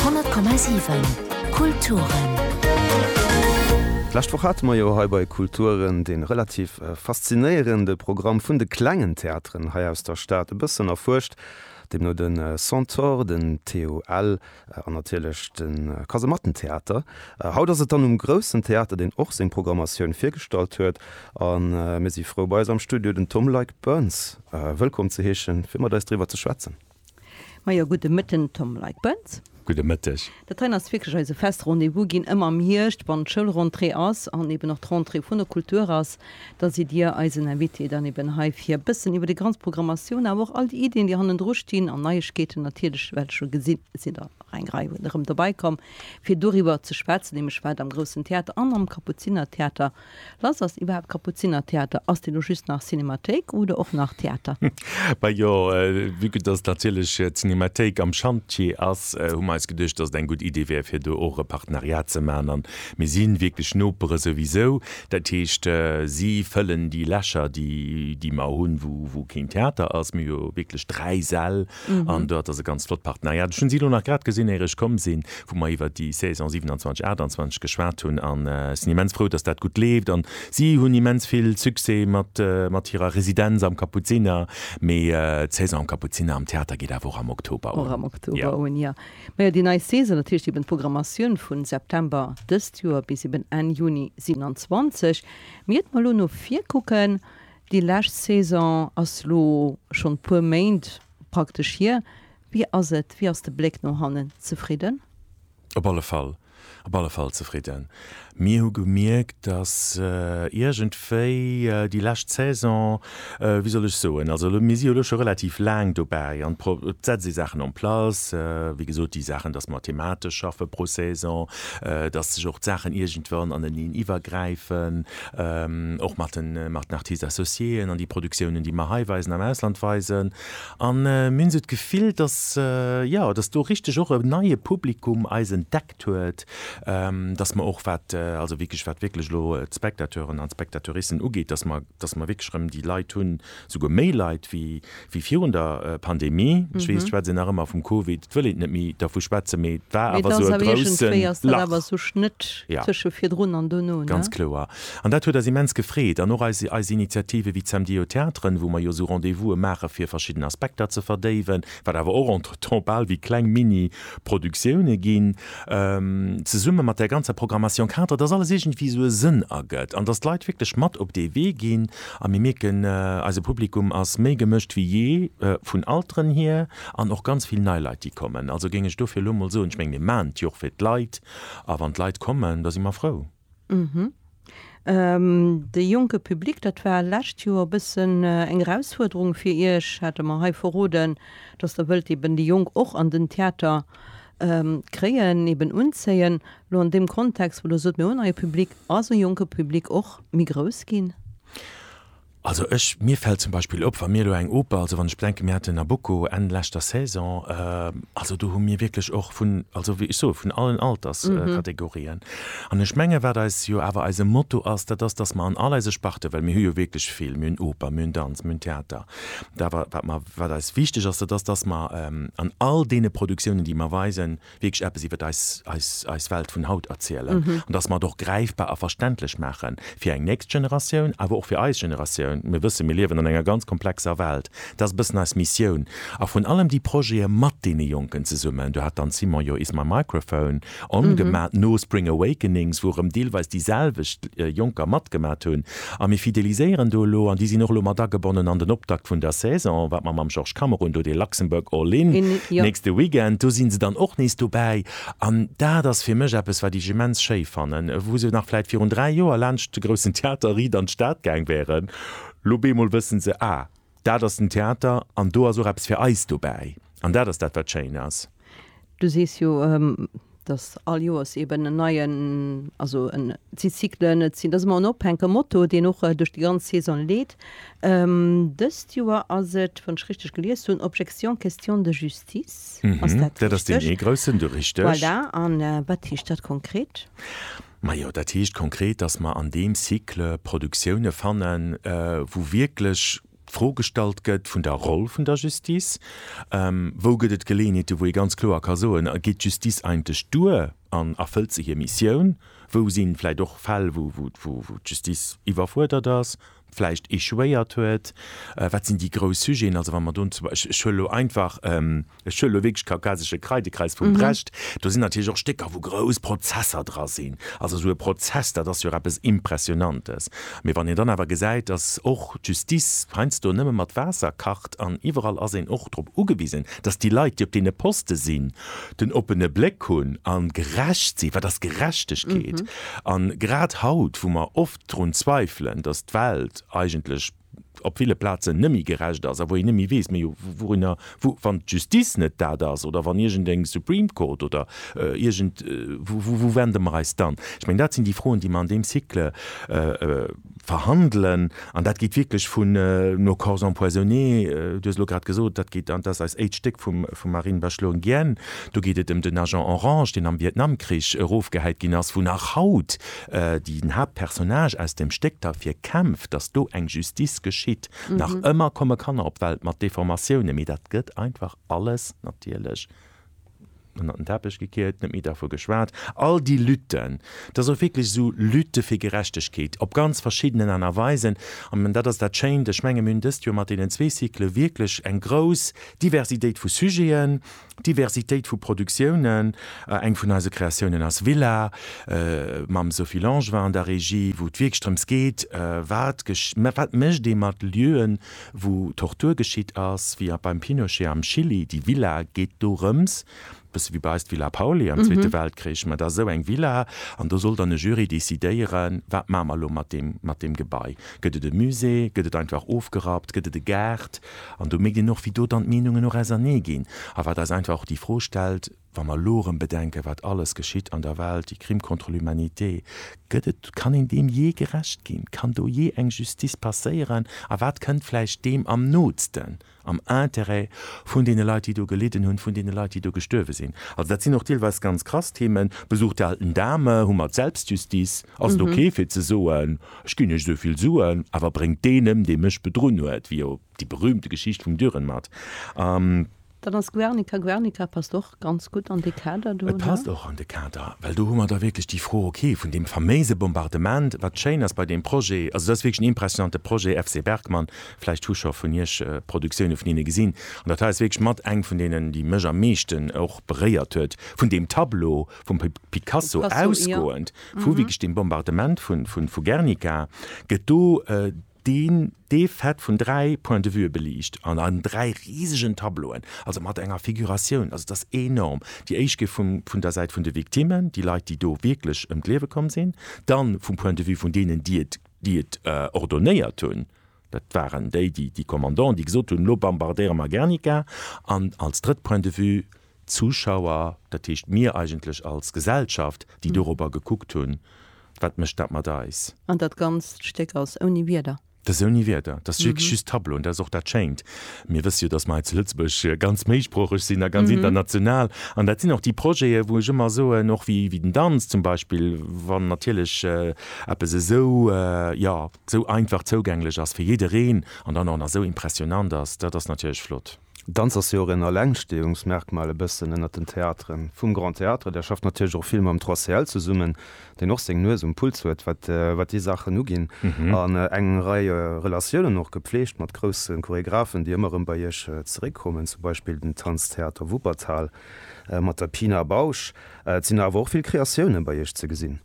10,7 Kulturen. D'lescht Woch hate mer jo hei bei Kulturen dee relativ faszinéierende Programm vun de klengen Theateren hei aus der Stad e bëssen erfuerscht, deemno de Centaure, den TUL an natierlech de Kasemattentheater. Haut ass et dann um groussen Theater, deen och seng Programmatioun virgestallt huet a mir si frou bei eis am Studio den Tom Leick-Burns wëllkomm ze heeschen, fir mat eis driwwer ze schwätzen. Majo, gudde Mëtten Tom Leitgbenz. Gudde Mëtteg. Dat heien ass wierklech eise fest Rendez-vous ginn ëmmer am Hierscht, wann d'Schoulrentrée ass an eben och d'Rentrée vun der Kultur ass. Da sidd Dir eisen Invité dann eben hei fir e bëssen iwwer déi ganz Programmatioun, awer och all déi Iddien, déi hannendru stinn an Neiegkeeten natierlech. Well scho gesinn, et sinn der nach eng Rei erëm dobäi komm, fir doriwwer ze schwätzen, nämlech wat am Groussen Theater an am Kapuzinertheater Lass, ass iwwerhaapt Kapuzinertheater? Ass deen elo just nach Cinémathéik oder och nach Theater? Bah jo, vue que dass natierlech d'Cinémathéik am Chantier ass, hu mer eis geduecht, dass et eng gutt Idee wär, fir do och e Partenariat ze maachen. An mir si wierklech Nopere souwisou. Dat heescht, si fëllen déi Lächer, déi mer hunn, wou keen Theater ass. Mir hu jo wierklech dräi Säll, An do hat Der se ganz flott Partenariat. Ech hunn si elo nach grad gesinn, éier ech komm sinn, wou mer iwwert déi Saison 27, 28 geschwat hunn. An ech sinn immens frou, dass dat gutt leeft. An si hunn immens vill Succès mat, mat hirer Residenz am Kapuziner. Mee d'Saison am Kapuziner am Theater geet awer och am Oktober un. Och am Oktober un, jo. Majo, déi nei Saison, dat heescht eben d'Programmatioun vu September dëst Joer bis eben Enn Juni 27. Mee iert mer elo no vir kucken, Déi lescht Saison ass lo schonn e puer Méint praktesch hier. Wéi ass et, wéi ass de Bléck no hannen? Zefridden? Op alle Fall, op alle Fall zefridden. Mir hu gemierkt, datt iergendwéi déi lescht Saison, wéi soll ech soen, also elo, mir si jo elo scho relativ laang dobäi an et setze sech Saachen en place, wéi gesot, déi Saachen, datt mer thematesch schaffe pro Saison, datt sech och d'Saachen iergendwann aneneen iwwergräifen, och mat den Artistes associéen an déi Produktiounen, déi mer hei weisen, am Ausland weisen. A mir hunn esou d'Gefill, datt, jo, datt do richteg och e neie Publikum eis entdeckt huet, datt mer och, wat also wierklech, wat wierklech elo d'Spectateuren an d'Spectateuricen ugeet, datt mer, datt mer wierklech erëm déi Leit hunn, Souguer méi Leit wéi virun der Pandemie. Ech weess, d'schwätzen nach ëmmer vum Covid, et wëll een net méi dervu schwätzen, mee et war awer esou e groussen Lach. Ganz kloer. An dat huet eis immens gefreet. An och eis Initiative wéi d'Samedie aux Theatres, wou mer jo esou Rendez-vouse maache fir verschidden Aspekter ze verdéiwen, wat awer och entretemps bal wéi kleng Mini-Produktioune ginn. zesumme mat där ganzer Programmation cadre, dass alles iergendwéi esou e Sënn ergëtt an dass d'Leit wierklech mat op dee Wee ginn. A mir mierken, eise Publikum ass méi gemëscht wéi jee, vun Alteren hier an och ganz vill nei Leit, déi kommen. Also géing ech dofir elo emol soen, ech menge mir maachen et jo och fir d'Leit a wann d'Leit kommen, da si mer frou. De jonke Public, dat war d'lescht Joer e bëssen eng Erausfuerderung fir Iech, hat Der mer hei verroden, dass Der wëllt eben déi Jonk och an den Theater kréien, eben unzéien. Elo an deem Kontext, wou Der sot, mir hunn en neie Public, ass e jonke Public och méi grouss ginn? Also ech, mir fält zum Beispill op, wa mir elo eng Oper, also wann ech bedenken, mir haten Nabucco Enn leschter Saison, also do hu mir wierklech och vun, also wéi ech soe vun allen Alterskategorien. An ech menge wat eis jo awer eise Motto ass, dat ass, datt mer an all eise Sparte, well mir hu jo wierklech vill, mir hunn Oper, mir hunn Danz, mir hunn Theater, wat mer, wat mer, wat eis wichteg ass, dat ass, datt mer an all deene Produktiounen, déi mer weisen, wierklech eppes iwwer eis, eis, eis Welt vun haut erzielen an dass mer et och gräifbar a verständlech maache fir eng nächst Generatioun, awer och fir eis Generatioun. Mir wëssen, mir liewen an enger ganz komplexer Welt. Dat ass e bëssen eis Missioun. A vrun allem déi Projete mat deene Jonken zesummen, do hat dann d'Simone jo Is My Microphone On gemaat, no Spring Awakenings, wou erëm deelweis déi selwecht Jonker matgemaat hunn, A mir fideliséieren do elo, an déi sinn och elo mat agebonnen an den Optakt vun der Saison, wat mer mam Georges Kammer hunn, do dee Luxembourg All In nächste Weekend, do si se dann och nees dobäi. An dat ass fir mech eppes, wat ech immens schéi fannen, wou se nach vläicht virun dräi Joer laanscht de Groussen Theater Ried an d'Stad gaang wäeren, lo bemol wësse se, ah, Dat ass den Theater an do ass och eppes fir eis dobäi. An dat ass dat, wat schéin ass. Du sees jo, datt all Joers eeben en neien, also et si Cyclen, et sinn, dat ass ëmmer en ophänke Motto, deen och duerch déi ganz Saison leet. Dëst Joer ass et, wann ech richteg gelies hunn, Objection, question de justice. Ass dat richteg? Dat ass deen ee groussen, du, richteg. Voilà. A wat heescht dat konkret? Majo, dat heescht konkret, dass mer an deem Cycle Produktioune fannen, wou wierklech d'Fro gestallt gëtt vun der Roll vun der Justice. Wou gëtt et Geleeënheete wou ee ganz kloer ka soen, geet d'Justice eigentlech duer an erfëllt se hir Missioun? Wou si vläicht och Fäll wou d'Justice iwwerfuerdert ass? vläicht échouéiert huet, wat sinn déi grouss Sujeten, also wa mer do, ech huele elo einfach, ech huele elo wierklech Kaukasesche Kreidekreis vum Brecht, do sinn natierlech och Stécker, wou grouss Prozesser dra sinn, also esou e Prozess, dat ass jo och eppes Impressionantes. Mee wann een dann awer gesäit, datt och d'Justice heiansdo nëmme mat Waasser kacht an iwwerall ass een och drop ugewisen, datt déi Leit, déi op deene Poste sinn, den oppene Bléck hunn a gerecht sinn, wat ass Gerechtegkeet? An grad haut, wou mer oft, drun zweifelen, datt d'Welt eigentlech op ville Plazen neméi gerecht ass, a wou een neméi weess, Majo, wourunner, wou, wann d'Justice net dat ass, oder wann iergendeng Supreme Court oder iergend, wou, wou wende mer eis dann? Ech mengen, dat sinn déi Froen, déi mer an deem Cycle verhandelen, an dat geet wierklech vun nos corps empoisonnés, du hues elo grad gesot, dat geet, an dat ass eis éischt Stéck vum, vum Marine Bachelot Nguyen, do geet et ëm den Agent Orange, deen am Vietnamkrich erofgehäit ginn ass, wou nach haut Den Haaptpersonnage aus dem Stéck derfir kämpft, datt do eng Justice geschitt. Nach ëmmer komme Kanner op d'Welt mat Deformatioune, mee dat gëtt einfach alles natierlech ënnert den Teppech gekiert, net méi dervu geschwat. All déi Lütten, et ass och wierklech esou, Lütte fir Gerechtegkeet op ganz verschiddenen Aart a Weisen. An dat ass dat Schéint, ech menge mir hunn dëst Joer mat deenen zwee Cycle wierklech eng grouss Diversitéit vu Sujeten. Diversitéit vu Produktiounen, eng vun eise Kreatiounen ass Villa, mam Sophie Langevin an der Regie, wou et wierklech drëms geet, wat wat mécht ee mat Lieuen, wou Tortur geschitt ass, wéi beim Pinochet am Chili. Déi Villa geet dorëms, e bësse wéi bei eis d'Villa Pauly am Zweete Weltkrich, mä et ass esou eng Villa an do soll dann e Jury decidéieren, wat maache mer elo mat deem, mat deem Gebai. Gëtt et e Musée, gëtt et einfach ofgerappt, gëtt et e Gaart, An do mierkt een och, wéi do dann d'Meenungen och ausernee ginn a wat eis einfach och déi Fro stellt, wa mer elo erëm bedenken, wat alles geschitt an der Welt, déi Crimes contre l'humanité, gëtt et, kann een deem jee gerecht ginn? Kann do jee eng Justice passéieren? A wat kënnt vläicht deem am nootsten am Intérêt vun deene Leit, déi do gelidden hunn, vun deene Leit, déi do gestuerwe sinn? Also dat sinn och deelweis ganz krass Themen. Besuch der alten Dame hu mer d'Selbstjustiz, ass et ok fir ze soen, Ech ginn iech esouvill Suen, awer bréngt deenem, dee mech bedrunn huet, wéi jo déi berühmte Geschicht vum Dürrenmatt a. Dann ass Guernica, Guernica passt och ganz gutt an dee Kader do. Et passt och an de Kader, well do hu mer da wierklech déi Fro, ok, vun deem faméise Bombardement, wat schéin ass bei deem Projet, also et ass wierklech en impressionnante Projet, FC Bergmann, vläicht hu scho vun iech Produktioune vun hinne gesinn, an dat hei ass wierklech mat eng vun deenen, déi mech am meeschten och beréiert huet, vun deem Tableau vum Picasso ausgoend. Vu wéi gescht dem Bombardement vu Guernica gëtt do dee Fait vun dräi Point de vuë beliicht an an dräi risegen Tableauen, also mat enger Figuratioun, also et ass enorm. Déi éischt géif vun der Säit vun de Victimmen, déi Leit déi do wierklech ëm d'Liewe komm sinn, dann vum Point de vue vun deenen déi et ordonnéiert hunn, Dat waren déi, déi, déi Kommandoen, déi gesot hunn, elo bambardéiere mer Gernika. An als drëtt Point de vue, d'Zuschauer, dat heescht mir eigentlech als Gesellschaft, déi dorobber gekuckt hunn, wat mécht dat mat eis. An dat ganzt Stéck ass ouni Wierder? Dat ass ouni Wierder, dat ass wierklech just Tableau. An dat ass och dat Schéint, mir wësse jo, datt mer hei zu Lëtzebuerg ganz méisproocheg sinn a ganz international. An dat sinn och déi Projete wou ech ëmmer soen, och wéi den Danz zum Beispill, wann natierlech eppes esou, jo, sou einfach zougänglech ass fir jiddereen an dann och nach sou impressionant ass, dat ass natierlech flott. Danz ass jo och en Allengsteeungsmerkmal e bëssen ënnert den Theateren vum Grand Théâtre. Der schafft natierlech och vill mam 3CL zesummen, deen och seng Nues um Puls huet, wat déi Saachen uginn, an eng Rei Relatiounen och gepflegt mat grousse Choregraphen, déi ëmmer erëm bei Iech zeréckkommen, zum Beispill den Tanztheater Wuppertal mat der Pina Bausch. Et sinn awer och vill Kreatiounen bei Iech ze gesinn.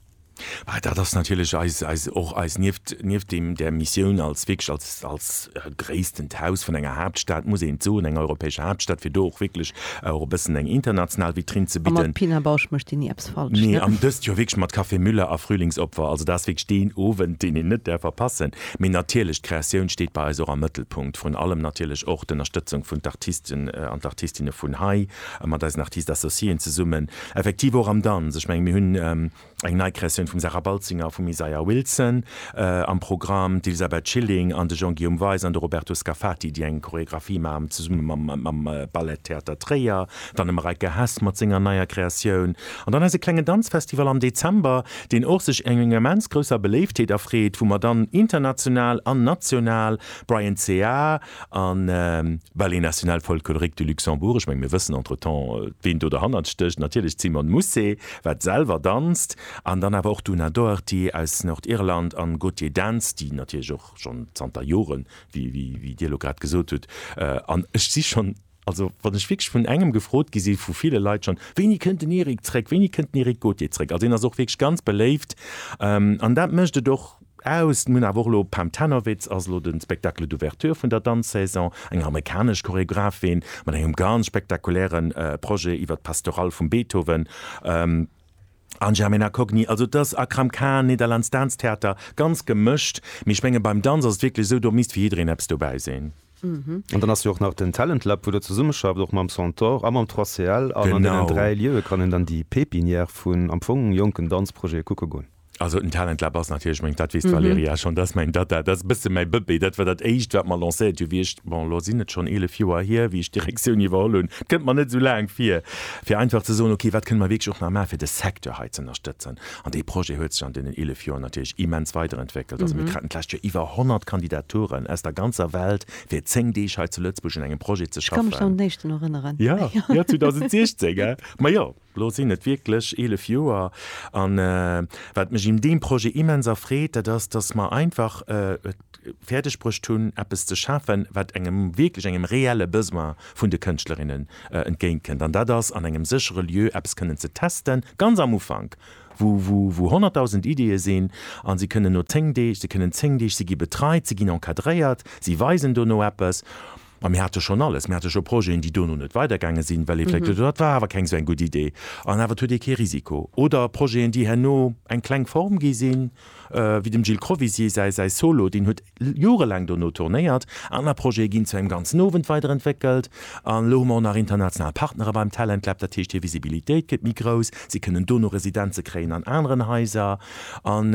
Dat ass natierlech eis, eis, och eis, nieft, nieft deem, där Missioun als wierklech als, als gréissten Haus vun enger Haaptstad, muss een et soen, enger europäescher Haaptstad, fir do och wierklech och e bëssen eng international Vitrine ze bidden. A mat Pina Bausch mécht Dir ni eppes falsch, ne? Nee, an dëst Joer wierklech mat Café Müller a Frühlingsopfer. Also dat ass wierklech deen Owend, deen een net däerf verpassen. Mee natierlech, d'Kreatioun steet bei eis och am Mëttelpunkt. Vrun allem natierlech och d'Ënnerstëtzung vun d'Artisten an d'Artistinne vun hei, mat eisen Artistes associéen zesummen. Effektiv och am Danz. Ech mengen, mir hunn eng nei Kreatioun vum Sarah Baltzinger a vum Isaiah Wilson am Programm, d'Elisabeth Schilling an de Jean-Guillaume Weis an de Roberto Scafati, déi eng Choreographie maachen zesumme mam Ballet Theater Tréier, dann de Mareike Hess mat senger neier Kreatioun an dann eise klengen Danzfestival am Dezember, deen och sech enger immens grousser Beléiftheet erfreet, wou mer dann international an national Bryan Cea, A Ballet National Folklorique du Luxembourg, ech menge mir wëssen entretemps, ween do derhannert stécht, natierlech d'Simone Mousset, wat selwer danzt, an dann awer och d'Una Doherty aus Nordirland an Gautier Dance, déi natierlech och schonn zanter Joren, wéi Dir elo grad gesot hutt, an ech si schonn, Also wann ech wierklech vun engem gefrot gi sinn, vu ville Leit schonn, Wéini kënnt den Eric zréck, wéini kënnt den Eric Gauthier zréck? Also hien ass och wierklech ganz beléift an dat mécht et och aus. Mir hunn awer och elo, Pam Tanowitz ass elo de Spectacle d'ouverture vun der Danzsaison, eng amerikanesch Choreographin mat engem ganz spektakuläre Projet iwwer d'Pastorale vum Beethoven, an Germena Cogni, also et ass Akram Khan, Netherlands Dance Theater, ganz gemëscht. Mee ech menge beim Danz ass et wierklech esou, do misst fir jiddereen eppes dobäi sinn. An dann ass jo och nach den Talent Lab, wou Der zesummeschafft, och mam Centaure a mam 3CL. An an deenen dräi Lieue kann een dann déi Pépinière vun am Fong jonken Danzprojete kucke goen. Also den Talent Lab ass natierlech meng, dat weess d'Valérie ja schonn, dat ass meng Data, dat ass e bësse mäi Bëbee. Dat war dat Éischt, wat mer lancéiert hunn, wéi ech, bon elo sinn et schonn eelef Joer hier, wéi ech d'Direktioun iwwerholl hunn, et kënnt mer net esou laang vir, fir einfach ze soen, okay, wat kënne mer wierklech och nach maachen, fir de Secteur hei ze ënnerstëtzen. An dee Projet huet sech an deenen 11 Joer natierlech immens weiderentwéckelt. Also mir kruten d'lescht Joer iwwer 100 Kandidaturen aus der ganzer Welt, fir 10 Deeg hei zu Lëtzebuerg un engem Projet ze schaffen. Ech ka mech an den éischten erënneren. Jo, jo, 2016. Ma jo, elo sinn et wierklech 11 Joer. A wat mech un deem Projet immens erfreet, dat ass, dass mer einfach, fäerdeg bruecht hunn, eppes ze schafen, wat engem, wierklech engem reelle Besoin vun de Kënschtlerinnen entgéintkënnt. An dat ass an engem séchere Lieu eppes kënnen ze testen, ganz am Ufank, wou, wou, wou honnertdausend Ideeë sinn. A si kënnen no zéng Deeg, si kënnen zéng Deeg, si gi betreit, si ginn encadréiert, si weisen dono eppes. Ma mir hate schonn alles. Mir hate scho Projeten, déi dono net weidergaange sinn, well ee vläicht gesot huet, dat war awer keng esou eng gutt Idee. An awer, et huet ee kee Risiko. Oder Projeten, déi herno eng kleng Form gi sinn, wéi dem Gilles Crovisier säi, säi Solo, deen huet jorelaang dono tournéiert. Aner Projete ginn zu engem ganzen Owend weiderentwéckelt. An elo hu mer och nach international Partnere beim Talent Lab. Dat heescht, hir Visibilitéit gëtt méi grouss. Si kënnen dono Residenze kréien an aneren Haiser. An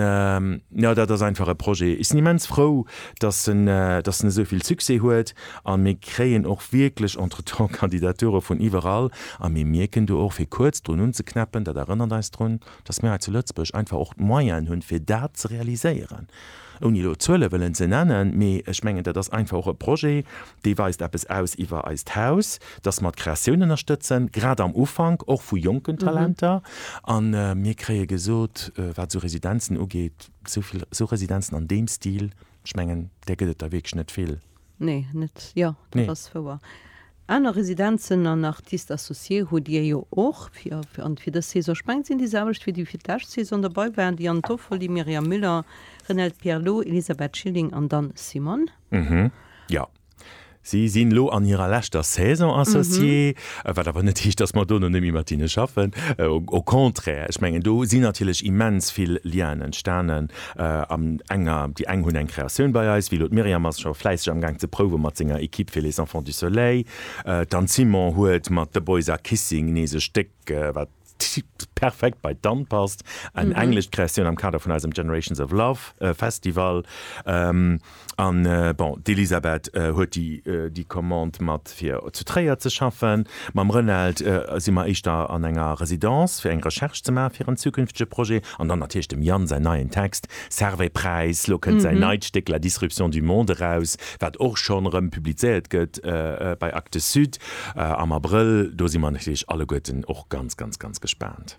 jo, dat ass einfach e Projet. Ech sinn immens frou, dass en, dass en esou vill Succès huet. A mir kréien och wierklech entretemps Kandidature vun iwwerall. A mir mierken do och, fir kuerz drun unzeknäppen, dat erënnert eis drun, dass mir hei zu Lëtzebuerg einfach och d'Moyenen hunn, fir dat ze realiséieren. Ouni elo Zuele wëllen ze nennen, mee ech mengen, dat ass einfach och e Projet, dee weist eppes aus iwwer eist Haus, dass mer d'Kreatioun ënnerstëtzen, grad am Ufank och vu jonken Talenter. A mir kréie gesot, wat esou Residenzen ugeet, esou vill esou Residenzen an deem Stil, ech mengen, där gëtt et der wierklech net vill. Nee, net, jo, dat nee. ass wouer. Aner Residenzen an Artistes associés hutt Dir jo och fir, an fir dës Saison. Ech mengen, et sinn déi selwecht wéi déi fir d'lescht Saison derbei waren, déi Anne Toffoli, Myriam Müller, Renelde Pierlot, Elisabeth Schilling an Dan Simon. Mhm. Jo. Si sinn elo an hirer leschter Saison associé, mhm. wat awer net heescht, dass mer dono net méi mat hinne schaffen. Au contraire, ech mengen, do sinn natierlech immens vill Lienen entstanen. An enger, déi eng hunn eng Kreatioun bei eis, wéi elo d'Myriam ass scho fläisseg am Gaang ze prouwe mat senger Equipe fir Les Enfants du Soleil. D'Anne Simon huet mat The Boys Are Kissing nees e Stéck, wat perfekt bei d'Anne passt, eng englescht Kreatioun am Kader vun eisem Generations of Love Festival. An bon, d'Elisabeth huet déi déi Commande mat fir zu Tréier ze schaffen. Mam Renald si mer éischter an enger Residence fir eng Recherche ze maache fir en zukünftege Projet. An dann natierlech dem Yann säin neien Text Servais Preis. Lo kënnt säin neit Stéck La disruption du monde eraus, wat och schonn erëm publizéiert gëtt bei Actes Sud am Abrëll. Do si mer natierlech alleguerten och ganz, ganz, ganz gespaant.